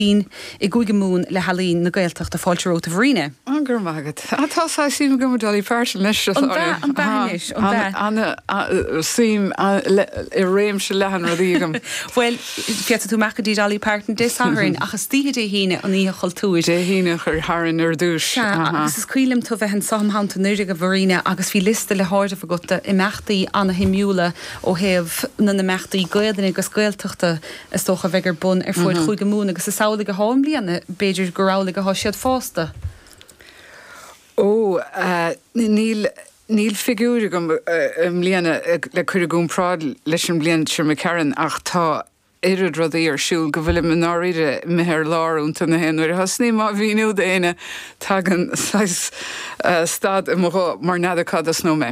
Bean i gCúige Mumhan le healaín na Gaeltachta fáilte romhat a Mharina. Go raibh maith agat. Tá saghas suim agam i Dolly Parton leis. An bhea, an bhea anois, an bhea. An-suim i réimse leathan rudaí agam. Bhuel, féadfaidh tú amach go dtí Dolly Parton Dé Sathairn ach istoíche Dé hAoine an Oíche Chultúir. Dé hAoine a chur tharainn ar dtús. Sea, agus is cuimhin liom tú a bheith anseo um Shamhain anuraidh a Mharina agus bhí liosta le háireamh agat d'imeachtaí ana-shuimiúla ó thaobh na n-imeachtaí Gaoluinne agus Gaeltachta Is dócha a bheidh ar bun ar fuaid Chúige Mumhan agus is amhlaidh athá i mbliana, b'fhéidir gur amhlaidh athá siad fásta. Ó, níl, níl figiúir agam i mbliana le cur i gcomparáid leis an mbliain seo imigh tharainn ach tá oiread rudaí ar siúl go bhfuilim i ndáiríre imithe ar lár iontu na haon uair a thosnaím á mhíniú d'éinne, tagann saghas stad i mo ghuth mar n'fheadar cá dtosnóidh mé.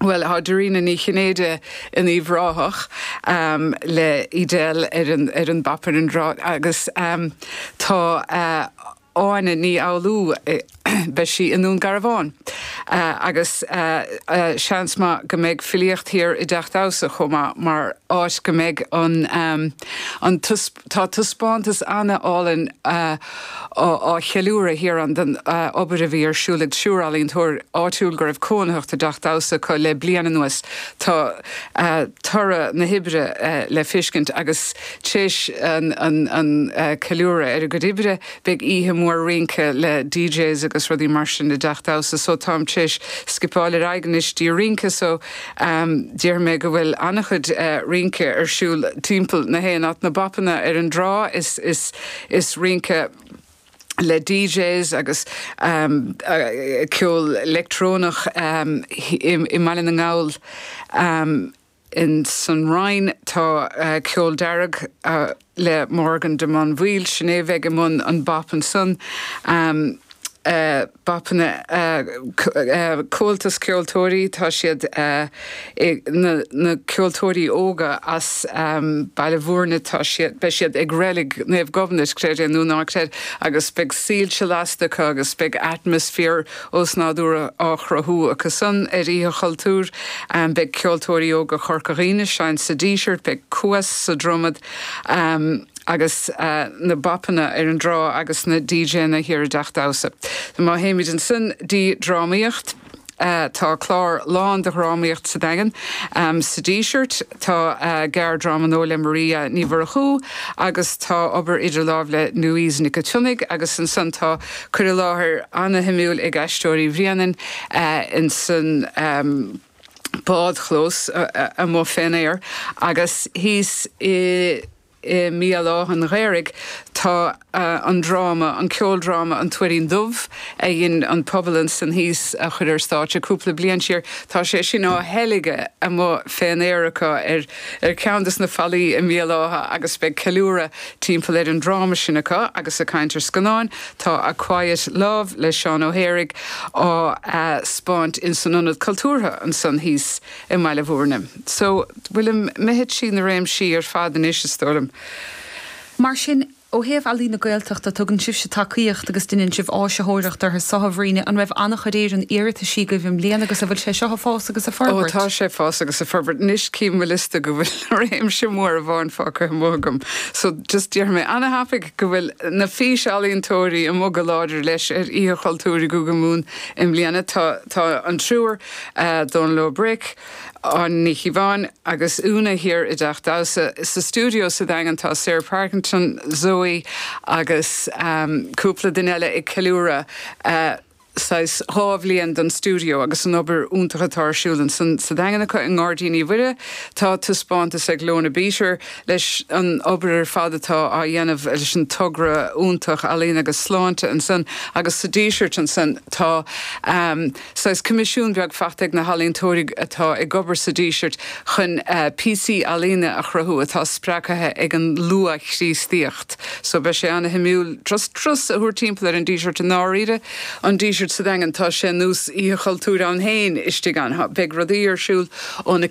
Bhuel, tá Dairena Ní Chinnéide in Uíbh Ráthach le Edel ar an bap ar an dtrá agus tá Áine Ní Fhoghlú, beidh sí i nDún Garbhán agus seans maith go mbeidh filíocht thiar i dTeach Damhsa chomh maith mar áit go mbeidh an Tá taispeántas an-álainn á cheiliúradh thiar ann den obair a bhí ar siúl ag triúr ealaíontóir áitiúil go raibh cónaitheacht i dteach damhsa acu le bliain anuas. Tá toradh na hoibre le feiscint agus tréis an ceiliúradh ar a gcuid oibre beidh oíche mhór rince le DJs agus rudaí mar sin i dteach damhsa so táim tréis scipeáil ar aghaidh anois dtí rince so Déarfaidh mé go bhfuil an-chuid rince ar siúl timpeall na haon áit, na bapanna ar an dtrá is rince le DJs agus ceol leictreonach i mBaile na nGall, ins an Rinn tá ceol dearg, le Morgan de Monville, sin é a bheidh i mbun an bap ansan, bapanna, Comhaltas Ceoltóirí, tá siad, na ceoltóirí óga as Baile Mhúirne, tá siad, beidh siad ag Reilig Naomh Gobnait, creid é nó ná creid, agus beidh soilse lasta acu agus beidh atmaisféar, osnádúrtha á chruthú acu san ar Oíche Chultúir. Beidh Ceoltóirí Óga Chorca Dhuibhne ag seinnt sa Díseart, beidh Cuas sa Dromad agus na BAPanna ar an dtrá agus na DJanna thiar i dTeach Damhsa. Má théimid ansan dtí drámaíocht, tá clár lán de dhrámaíocht sa Daingean, sa Díseart, tá gearrdráma nua le Maria Ní Mhurchú agus tá obair idir láimh le Louise Nic an tSionnaigh agus ansan tá cur i láthair ana-shuimiúil ag Aisteoirí Bhréanainn ins an mbádchlós amuigh fén aer agus thíos i mBéal Átha'n Ghaorthaidh tá an dráma, an ceoldráma An Tuairín Dubh a dhein an pobal ansan thíos a chur ar stáitse cúpla bliain siar. Tá sé sin á theilgeadh amuigh fén aer acu ar. ar cheann de na fallaí i mBéal Átha agus beidh ceiliúradh timpeall ar an dráma sin acu agus ag caint ar scannáin. Tá A Quiet Love le Seán Ó hÉaraigh á thaispeáint in san Ionad Cultúrtha ansan thíos i mBaile Mhúirne. So, bhfuilim, imithe trí na réimsí ar fad anois, is dóigh liom. Mar sin, Ó thaobh ealaín na Gaeltachta, tugann sibhse tacaíocht agus deineann sibh áisitheoireacht orthu seo, a Bhriain. An raibh an-chuid éileamh, iarrataisí agaibh i mbliana agus an bhfuil sé seo ag fás agus ag forbairt? Ó, tá sé ag fás agus ag forbairt. Anois, chím mo liosta go bhfuil réimse mór amháin fágtha amuigh agam. So, just déarfaidh mé ana-thapaidh go bhfuil na físealaíontóirí amuigh go láidir leis ar Oíche Chultúir i gCúige Mumhan i mbliana. Tá, tá an triúr, Dónal Ó Bric, Áine Ní Chíobháin agus Úna thiar i dTeach Damhsa. Sa stiúideo sa Daingean tá Sarah Parkinson, Zoe agus cúpla duine eile ag ceiliúradh saghas dhá bhliain den stiúideo agus an obair iontach atá ar siúl ansan sa Daingean acu. I nGairdín Uí Mhuire tá taispeántas ag Lorna Beater leis an obair ar fad atá á dhéanamh leis an togra iontach Ealaín agus Sláinte ansan agus sa Díseart ansan tá. Saghas coimisiún beag faighte ag na healaíontóirí atá ag obair sa Díseart chun píosaí ealaíne a chruthú atá spreagtha ag an luath-Chríostaíocht. So beidh sé ana-shuimiúil turas a thabhairt timpeall ar an Díseart i ndáiríre. An Díseart sa Daingean, tá sé ar nós Oíche Chultúir ann féin istigh ann. Beidh rudaí ar siúl ón 4.